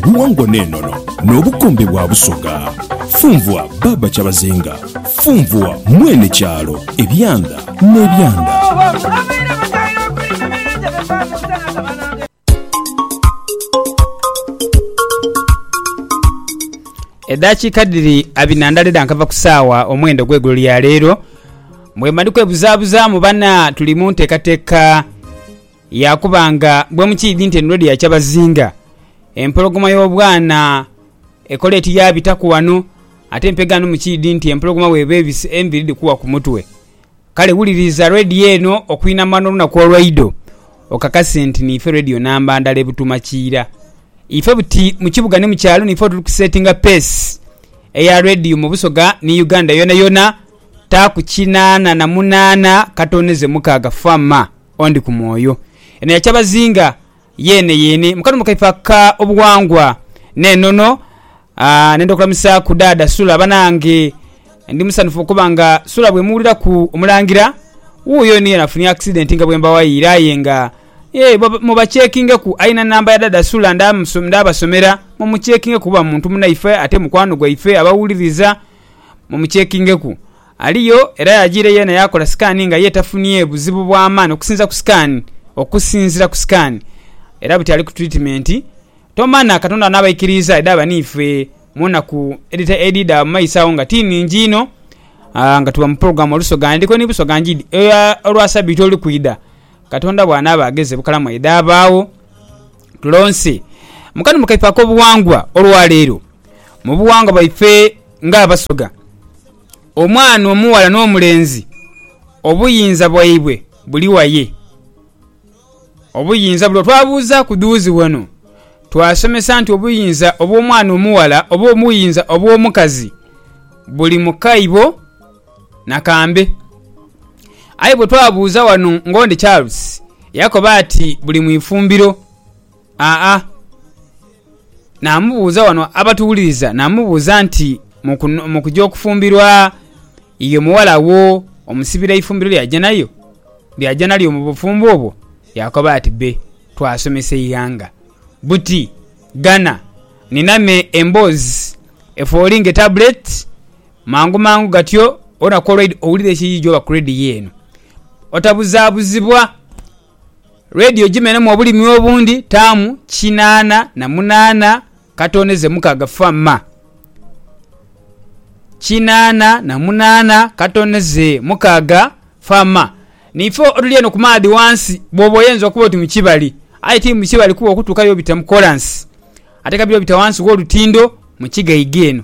buwangwa n'enono n'obukombe bwa Busoga. Funvua Baaba Kyabazinga, funvua mwene kyalo, ebyanda n'ebyanda. Edhakiika dhiri abina ndale dha nkava ku saawa omwenda ogw'eigulo lya leero mwemali kwebuzabuzaamu bana tuli mu nteekateeka Yaakuba nga bwe mukiidhi nti endhwa edhia kyabazinga, empologoma y'obwana ekola eti yaabitaku wano, ate mpegaano mukiidhi nti empologoma bw'eba ebise enviri dhikuwa ku mutwe. Kale wuliriza Radio eno okuinama n'olunaku olwaidho okakase nti niife Radio namba ndala e Butuuma Kiira. Ife buti mu kibuga ni mu kyalo niife otuli kusetinga peesi eya Radio mu Busoga ni Uganda yonayona, taaku kinaana na munaana katooneze mukaaga. Fama. ondi ku mwoyo. Eno ya kyabazinga yeene yeene. Mu kanuma kaife aka obughangwa n'enono, nenda okulamusaaku Dhaadha Sula. Banange ndi musanhufu okuba nga Sula bwemuwuliraku omulangira wuuyo yonayona afunye accident nga bwembawayiire aye nga yee mubakyekingeku. Alina namba ya Dhaadha Sula ndhabasomera mumukyekingeku kuba muntu munaife ate mukwano gwaife abawuliriza mumukyekingeku. Aliyo era yajiire yeena yaakola sikaani nga ye tafunie buzibu bwa maani okusinza ku sikaani okusinzira ku sikaani era buti ali ku tiritimenti. Tomana Katonda anaabaikiriiza edhaaba n'ife mu naku edhidha mu maiso agho nga ti ningi inho nga tuba mu pulogulaamu Olusoga Ndiko ni Busoga Njidhi eya olwa sabiiti olukwidha, Katonda bw'anaaba agheze bukalamu edhaabaagho. Tulonse mu kanuma kaife ak'obughangwa olwaleero. Mu bughangwa bwaife nga Abasoga, omwana omughala n'omulenzi obuyinza bwaibwe buli waye? Obuyinza buno twabuuzaaku dhuuzi wano. Twasomesa nti obuyinza obw'omwana omughala oba obuyinza obw'omukazi buli mu kaibo. Nakambe. Aye bwe twabuuza wano ng'ondi Charles yakoba ati buli mu ifumbiro. Aa. Namubuuza wano abatuwuliriza namubuuza nti mu kuja okufumbirwa ye omuwala wo omusibira eifumbiro ly'aja nayo ly'aja nalyo mu bufumbo obwo? Yakoba ati be twasomesa eighanga buti ghana nina me emboozi efooli ng'etabuleti. Mangu mangu gatyo wona ku olwaidha owulira ekiyiyi gyoba ku rediyo eno, otabuzabuzibwa. Rediyo gimenhemu obulimi obundi taamu kinaana na munaana katondeze mukaaga fa ma. Kinaana na munaana katondeze mukaaga fa ma. Niife otuli eno ku maadhi ghansi bwoba oyinza okuba oti mu kibali aye ti mu kibali kuba okutuukayo obita mu kolansi ate kabire obita ghansi gh'olutindo mu kigaiga eno.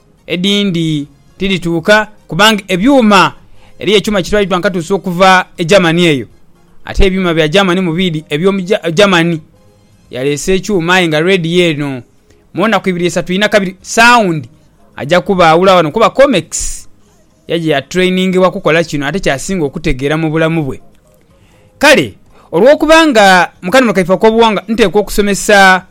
Edhindi tidhituuka kubanga ebyuma, eriyo ekyuma ekitwaliddwa nga katuuse okuva e Germany eyo. Ate ebyuma bya Germany mu biidhi eby'omu Germany. Yaleese ekyuma aye nga Radio eno mu naku ibiri isatu inha kabiri sound aja kubaawula wano kuba Comex yaja ya trainingibwa kukola kino ate ky'asinga okutegeera mu bulamu bwe. Kale olw'okuba nga mu kanholo kaife ak'obughangwa nteekwa okusomesa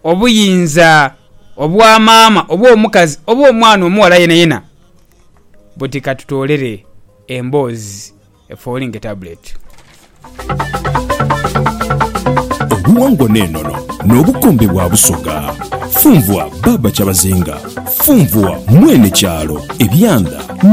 Obuyinza obwa maama oba omukazi oba omwana omughala yenayena buti katutoolere emboozi e Falling Tablet. Obuwangwa n'enono n'obukombe bwa Busoga. Funvua Baaba Kyabazinga. Funvua Mwene Kyalo, Ebyanda.